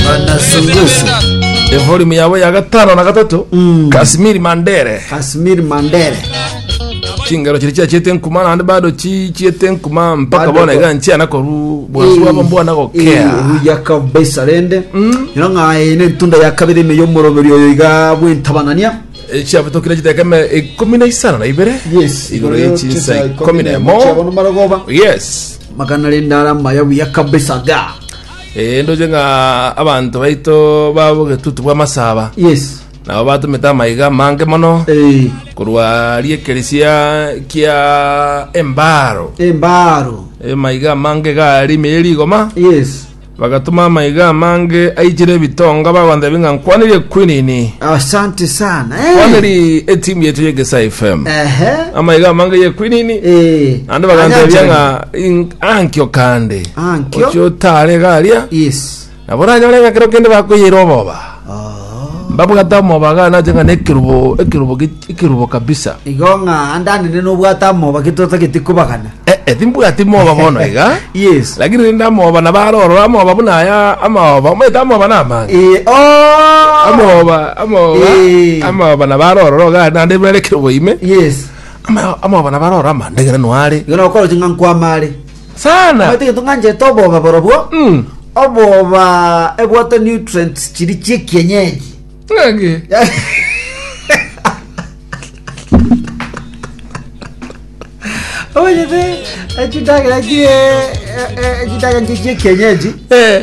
Banasungusu. Evolume yabo ya gatano na gatato Casimir Mandere Casimir Mandere. chingero chiri chiachete nkuma naende bado chi- chiete nkuma mpaka Bado bona ko- iga nchiana koru bwansu bwabo mbwana gokea Huya kabisa rende. Ino ng'aye ne ntunda ya kabiri ime y'omoroberi oyo iga bw'entabanania. echiabitokire chitekeme ikumi na isano na ibere Yes. igoro ye chinsa ikumi na emo Chiabo no marogoba. yes Magana rende ara maya buya kabisa ga. Ee, ndoche ng'a abanto baito b'obogetutu bw'amasaba Yes. nabo batomete amaiga amange mono Eh, korwa riekeresia kia embaro embaro. emaiga amange gari ime rigoma Yes. bagatuma amaiga amange aichire ebitonga bagontebia ng'a nkwanire kwinini Asante sana. Eh. kwaniri etimu yetu yegesa fm Ehe. amaiga amange ye kwinini Eh. ande bagantebia Anyanja. ng'a "In- ankio kande Ah, nkio. ochia otare iga aria Yes. nabo oranyore ng'a kero kende bakoyeire oboba Oh. mbabwate omoba iga nache ng'a na ekerubo ekerubo gi- ekerubo kabisa Igo ng'a ande anene nobwate amoba getotagete kobagana. Eh, eh, timbwati moba bono iga Yes. lakini rinde amoba nabo arorora amoba buna aya amaoba omaete amoba na amanga Eh, oh. amoba amoba Eh. amoba nabo arorora iga naende bere ekerubo ime Yes. Ama- amoba nabo arorora amande ng'ina noare Igo nokoro ching'a nkwamare. Sana. Omanyete egento ng'anchete oboba borobwo, Mm. oboba ebwate nutrients chiria chi'ekienyeji. Ng'aki. Omanyete echidagera chie echidagera chi'ekienyeji Eh.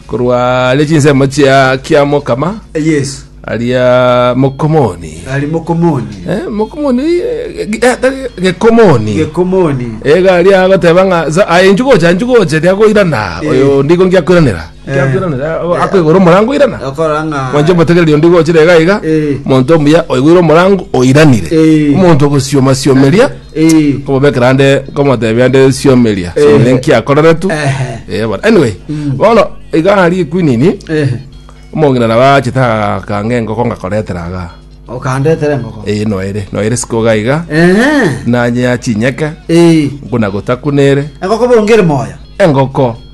Korwa aria chinsemo chia kiamokama Yesu aria mokomoni ari mokomoni Eh, mokomoni eh, ge- eh, tari- gekomoni gekomoni ega aria agoteba ng'a za- aye nchugocha nchugoche riagoirana Eh. oyo ndigo ngiakwiranera Eh. ngiakwiranera Eh. akoigora omorango oirana okora ng'a mwanche motegereria ondigo ochire iga iga Eh. monto omuya oigwire omorango oiranire Eh. omonto ogosiomasiomeria komobekera ande komotebia ande siomeria siomeria nkiakoreretu eh but anyway bono iga hari kwinini omong'ina nabo achete akange engoko ngakoretera iga okandetera engoko eh noere noere sikoga iga nanye ya chinyeke nkuna gotakunere engoko bonge ere moyo engoko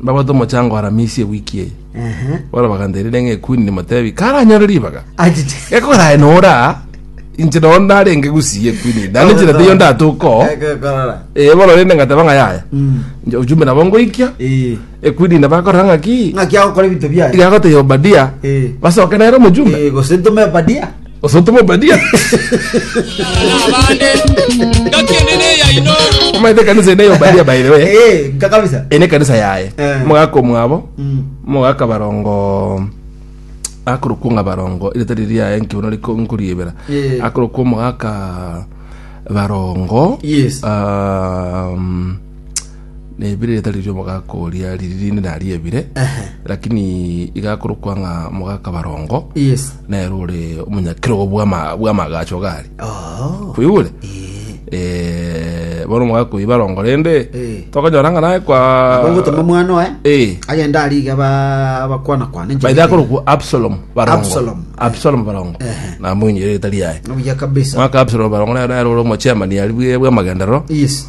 Mbabwate omochango aramisia ewiki eye. Bono baganteneria ng'a Ekwini nimotebi karanyore ribaga. Achiche. Gekogera aye nora inche nao narenge gusiya Ekwini eye. Naende inchera teiyo ndatoka oo. Ekekorora. Eh, bono rende ngateba ng'a yaya. Nche ujumbe nabo ngoikia. Eh. Ekwini ina bakorora ng'a ki? Ng'aki agokora ebinto biaye. Igagotebia Obadia. Eh. Basoke nere omojumbe. Eh, gose ntome Obadia. Osote Omobadia. Abande, ngaki ende neyaino. Omaete ekanisa ende ya Obadia by the way. Eh, nka kabisa. Ene ekanisa yaye. Eh. Mogaka omwabo. Mm. Mogaka barongo akorokwa ng'a barongo ire tari riaye nkiuna riko nkoriebera Eh. akorokwa omogaka barongo Yes. um, Nebire ritari ri'omogaka oria riri rinde naria ebire Ehe. lakini igakorokwa ng'a mogaka barongo Yes. nere ore omonyakerogo bw'ama- bw'amagacho gare Oh. kwigure Eh, bono omogaka oyi barongo rende Eh. tokonyora ng'a naye kwa Ogotoma mwana oye. Eh. Agenda ariga ba bakwana kwana. by the akorokwa absalom barongo Absalom. absalom barongo Ehe. namoinyire ritari yaye Obuya kabisa. mwaka absalom barongo nere nere ore omochemani ari bwe- bw'amagenderero Yes.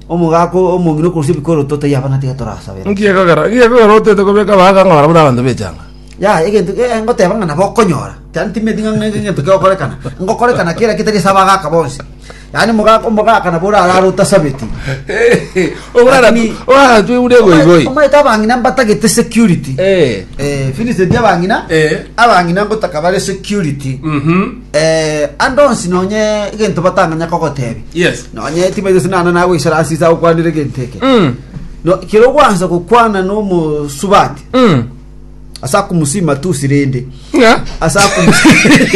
Omogaka omong'ina okorusia ebikoroto taiyo abana tiga torasabera. Nki ekogera? Nki ekogera otoete kobeka abagaka ng'a barabwo nabanto b'echanga? Yaya, egento eh, ngoteba ng'a nabo okonyora. Yaani timanyeti ng'a ng'a egento kegokorekana. Ngokorekana kera eketari ase abagaka bonsi. Yaani omogaka omogaka nabo orarare otasabeti. Lakini- oraratwe buna egoigoi Omanyete abang'ina mbatagete security. Eh. Eh, Vincent abang'ina, Eh. abang'ina ngotaka bare security. Mhm. Eh, ande onsi nonye egento batang'anya kogotebia Yes. nonye tibaito sinana nagoisara ase ase agokwanera egento eke Mm. No, kero gwansa gokwana nomosubati Mm. ase akomusima tusi rende Yeah. ase akomusima